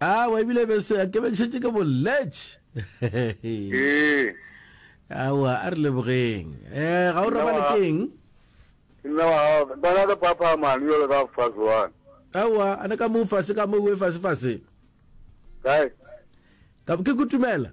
Awa, ebile e be se a kebekšetše ke bolletše. Ee. Awa, a re lebogeng. Eh, ga o robale ke eng? Nna wa gago, ba ga ka papa mane, jalo ka fase wane. Awa, a ne ka mo fase ka mo uwe fase fase. Kae? Ka ke kutumela.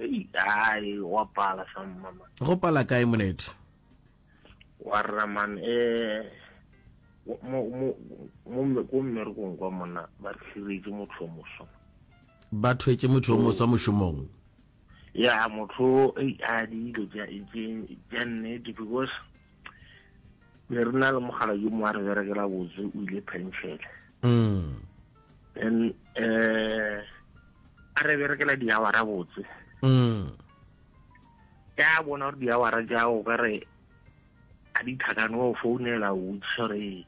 Ei, ai, wa pala sa mmama. Go pala kae monete? Wa rra man, eh, wa- mo, mo, mo, mme- ko mmerekong kwa monna ba re hliretše motho yo moswa. Ba thwetše motho yo moswa mošomong. Ya, motho, ei, a dilo tša, tše, tša nnete because ne re na le mogala yo mongwe a re berekela botse o ile penšene mm. then um a re berekela diawara botse mm. ka bona gore diawara jao ka re a di tlhakane wa o founela o botsisa gore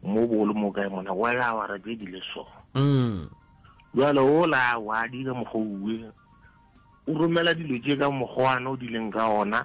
mo bolo mo kae mona wa ya awara tse di le so mm. jalo o la wa dile mogoue o romela dilo tse ka mogoana o dileng ka ona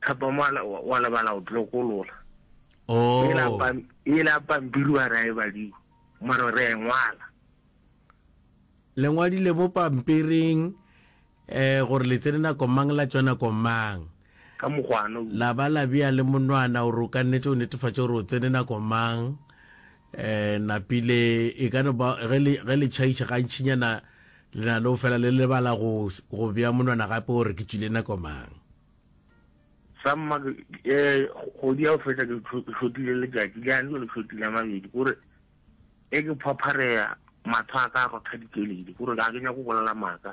Thapama wa le- wa lebala go tlokolola Oh. e la pam- e la pampiri wa ra e badiwa mare re a e ngwala le ngwadile mo pampiring eh gore le tsene nako mang la tswa nako mang ka mokgwana o la ba la bea le monwana gore o ka nnete o netefatše gore o tsene nako mang E napile e ka no ba ge le, ge le tšhaiša gantšinyana le na le go fela le lebala go, go bea monwana gape gore ke tšwile nako mang. Sa mma, ke, e, kgwedi ya go feta ke šotile letšatši, le yane jwale ke šotile a mabedi, ke gore ge ke phaphareya, mahlo a ka a rotha dikeledi, ke gore ga ke nyake go bolela maaka.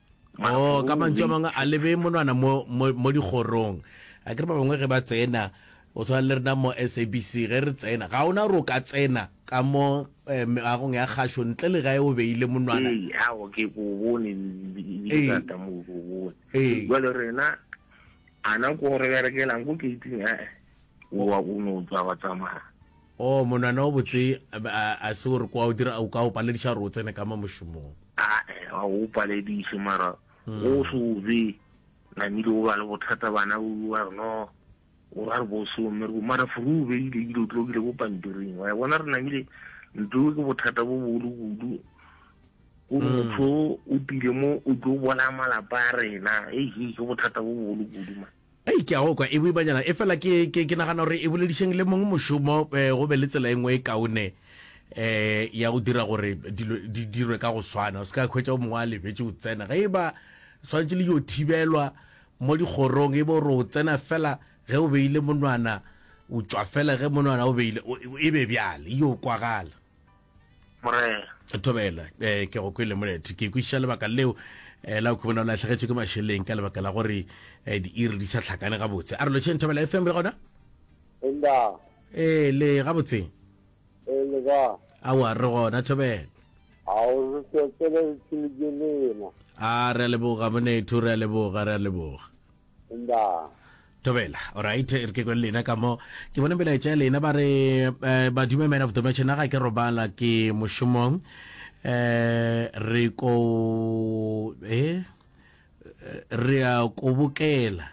Oo, ka mantšu a mangwe a lebe monwana mo, mo, mo dikgorong. A ke re ba bangwe ge ba tsena, go tshwana le rena mo SABC, ge re tsena, ga ona gore o ka tsena ka mo eh, meagong ya kgašo ntle le gae o beile monwana. Ee, ao, ke ko bone, ebile ka ta mo ko bone. Ee. Jwale rena, ana ko re berekelang ko gate-ing, a-e, wa, o no tswa wa tsamaya. Oh, monwana o botse, a, a se o re kwa o dira, o ka o palediša gore o tsene ka mo mošomong? A-e, ga o palediše, mara go mm. se o be namile o ba le bothata bana o ba re no o ba re bosome re mara furu o beile dilo tlokile bo pampiring wa e bona re namile ntlo ke bothata bo bogolo kudu o mm. motho o tile mo o tlo bolaya malapa a rena ei ke bothata bo bogolo kudu ma Hei, ke a go kwa, e boimanyana, efela ke, ke, ke nagana gore e boledišeng le mong mošomo, e, go be le tsela e nngwe e kaone, e, ya go dira gore dilo di dirwe ka go swana. O se ka hwetša o mongwe a lebetše o tsena. Ge e ba swanetše le yo thibelwa mo dikgorong, e be o re o tsena fela ge o beile monwana, o tšwa fela ge monwana o beile, o, e be bjale, e yo kwagala. morena thobela eh ke go kwele molethe ke kwiša lebaka leo eh la khubona la hlagetswe ke masheleng ka lebaka la gore eh di iri di sa tlhakane ga botse a re lo tshentha bela FM le gona enda eh le ga botse eh le ga a wa re gona thobela a o re tsetsele tsilike lena a re leboga monethu re leboga re leboga Ndaa. Thobela, Orait, e re ke kwe le lena ka mo. Ke bone melaetša ya lena ba re, eh, Badume Man of the Match, na ga ke robala ke mošomong. Eh, re ko, eh, re a kobokela.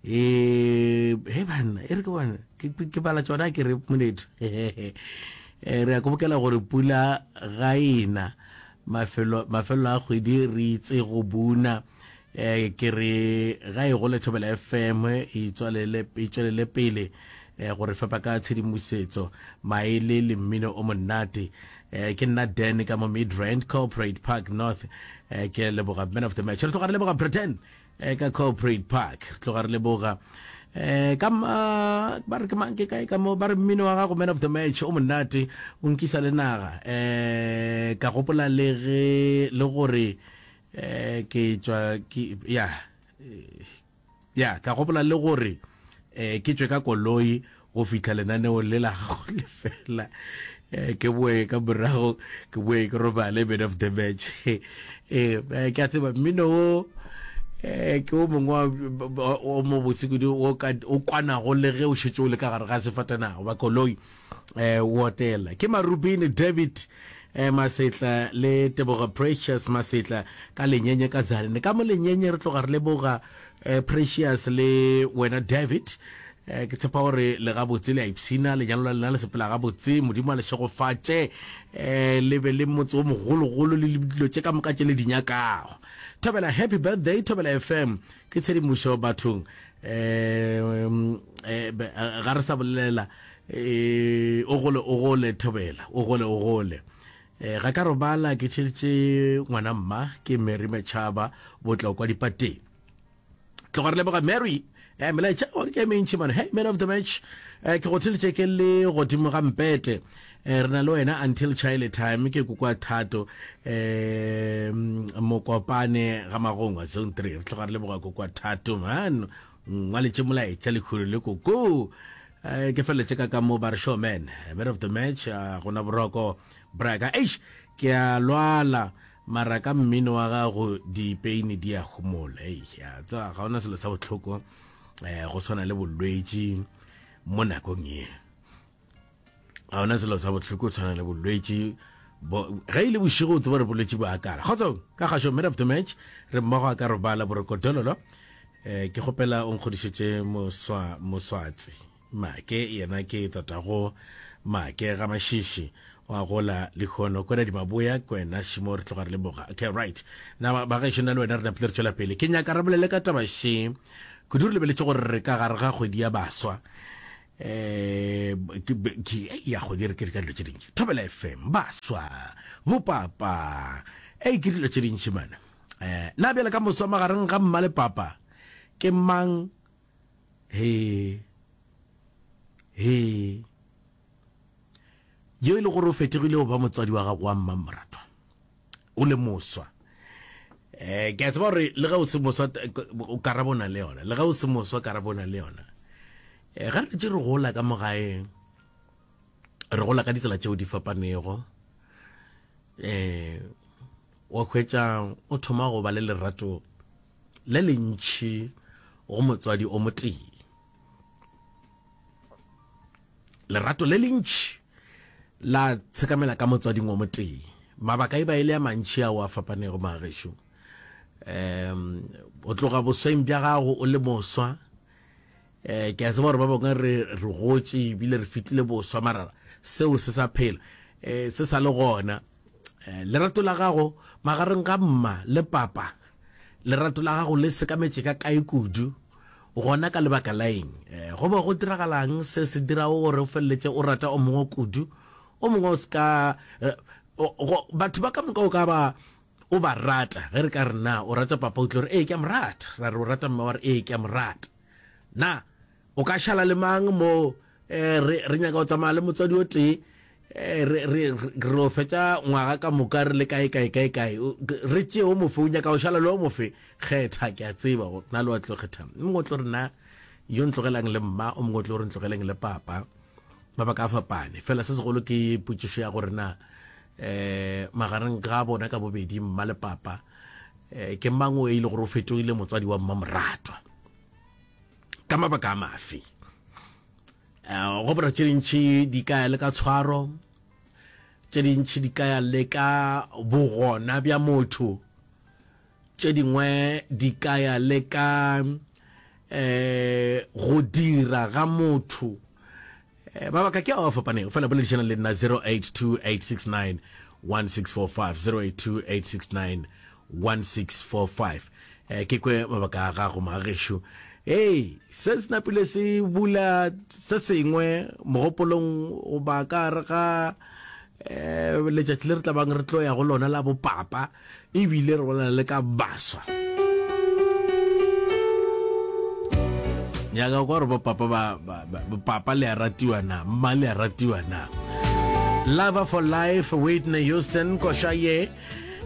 Eh, he banna, e re ke bona, ke, ke- ke bala tšona ke re monetu. Eh, re a kobokela gore pula ga ena mafelo mafelo a kgwedi re itse go buna eh ke re ga e gole thobela fm e itswalele e tswelele pele eh gore fepa ka tshedimosetso maele le mmino o monate eh ke nna dan ka mo midrand corporate park north eh ke leboga man of the match re tloga re leboga britain eh ka corporate park re tloga re leboga eh ka ma- ba re ke mang ke kae ka mo ba re mmino wa gago man of the match o monate o nkisa le naga eh ka gopola le ge le gore eh ke tswa ke ya ya ka gopola le gore eh ke tswe ka koloi go fihla lenaneo le la gago le fela eh ke boe ka morago ke boe ke robale man of the match eh, eh ke a tseba mmino o eh ke o mongwe o mo botse kudu o kwanago le ge o šetse o le ka gare ga sefatanago ba koloi eh, o otela. Ke Marubini David eh, Masetla le Tebogo Precious Masetla ka lenyenye ka Zalene. Ka mo lenyenye re tloga re leboga eh, Precious le wena David eh, ke tshepa gore le gabotse le a ipshina lenyalo la lena le sepela gabotse modimo a le šegofatše eh, le be le motse o mogologolo le dilo tše ka moka tše le di nyakago thobela happy birthday thobela fm ke tshedimošo bathong eh, eh, ga re sa bolelela E, o gole, o gole, Thobela, o gole, o gole. E, ga ka robala ke tšhelitše ngwana mma, ke Mary Machaba, Botlokwa dipateng. Tloga re leboga Mary, e, melaetša gore ke e mentši mane. Hey, man of the match, e, ke go tšhelitše ke le godimo ga mpete. E, re na le wena until chile time, ke kukwa thato, e, Mokopane ga magongwa, zone three. Re tloga re leboga kukwa thato, man. Ngwaletše molaetša lekhuru le koko. Eh, ke feleletše ka ka mo ba re show man eh, man of the match a ah, gona boroko braka eish ke a lwala mara ka mmino wa gago dipeini di a gomola ei ya tsa ga ona selo sa botlhoko eh go tshwana le bolwetši mo nakong e ga ona selo sa bohloko tshwana le bolwetši ge e le bošego o tseba re bolwetši bo akala kgotsong ka gašo mid of the match re mmogo a ka robala borokodololo um ke kgopela o nkgodišetše moswatsi make yena ke tatago make ga mašiši wa gola lehono kwena dimaboya kwena šimo re tloga re le boga okay right na ba ga šona le wena re napile re tšwela pele ke nyaka re bolele ka taba she kudu re lebeletse gore re ka gare ga kgwedi ya baswa ke ya go dire ke re ka dilo tše dintši thobela fm ba swa bo papa e ke dilo tše dintši mana eh na bjale ka moswa magareng ga mma le papa ke mang he he yo e le gore o fetegile go ba motswadi wa gago wa mmamoratwa o le moswa eh ke a tseba gore le ge o se moswa o karabona le yona le ge o se moswa karabona le yona eh ga re tše re gola ka mogaeng re gola ka ditsela tšeo di fapanego eh wa hwetša o thoma go ba le lerato le lentšhi go motswadi o motee lerato le lentšhi La tshekamela ka motswading o motee. Mabaka e ba e le a mantši ao a fapanego, magešo. Um, o tloga bosweng bja gago o le moswa. Eh, ke a tseba gore ba bangwe re re gotše ebile re fitlile boswa, mara seo se sa phela, eh, se sa le gona. Lerato la gago magareng ga mma le papa, lerato la gago le sekametše ka kae kudu, gona ka lebaka la eng? Go be go diragalang se se dirago gore o feleletše o rata o mongwe kudu, o mongwe o se ka? Batho ba ka moka o ka ba o ba rata. Ge re ka re, Na o rata papa? O tlo re, Ee, ke a mo rata. Ra re, O rata mme? Wa re, Ee, ke a mo rata. Na O ka šala le mang mo eh, re, re nyaka go tsamaya le motswadi o tee eh, re, re, re o fetša ngwaga ka moka re le kae kae kae kae re tšee o mofe o nyaka go šala le o mofe kgetha ke a tseba go na le wa tlo kgetha mongwe o tlo re na yo ntlogelang le mma o mongwe o tlo re ntlogeleng le papa mabaka a fapane fela se segolo ke potšišo ya gore na eh magareng ga bona ka bobedi mma le papa eh, ke mang o e ile gore o fetogile motswadi wa mmamoratwa ka mabaka a mafe um go bora tše dintšhi di ka ya le ka tshwaro tše dintšhi di ka ya le ka bogona bja motho tše dingwe di ka ya le ka um go dira ga motho Eh, mabaka ke ao a fapanego fela boledišana le nna 0828691645 0828691645 eh, ke kwe mabaka a gago magagešu ee se se napile se bula se sengwe mogopolong goba ka re ga um letšatši le re tla bang re tlo ya go lona la bopapa ebile re bolela le ka baswa nyaka kwa gore bopapa ba bopapa le a ratiwa na mma le a ratiwa na lover for life whitney houston koša ye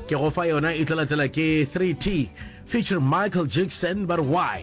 ke go fa yona e tla latela ke 3t feature michael jackson but why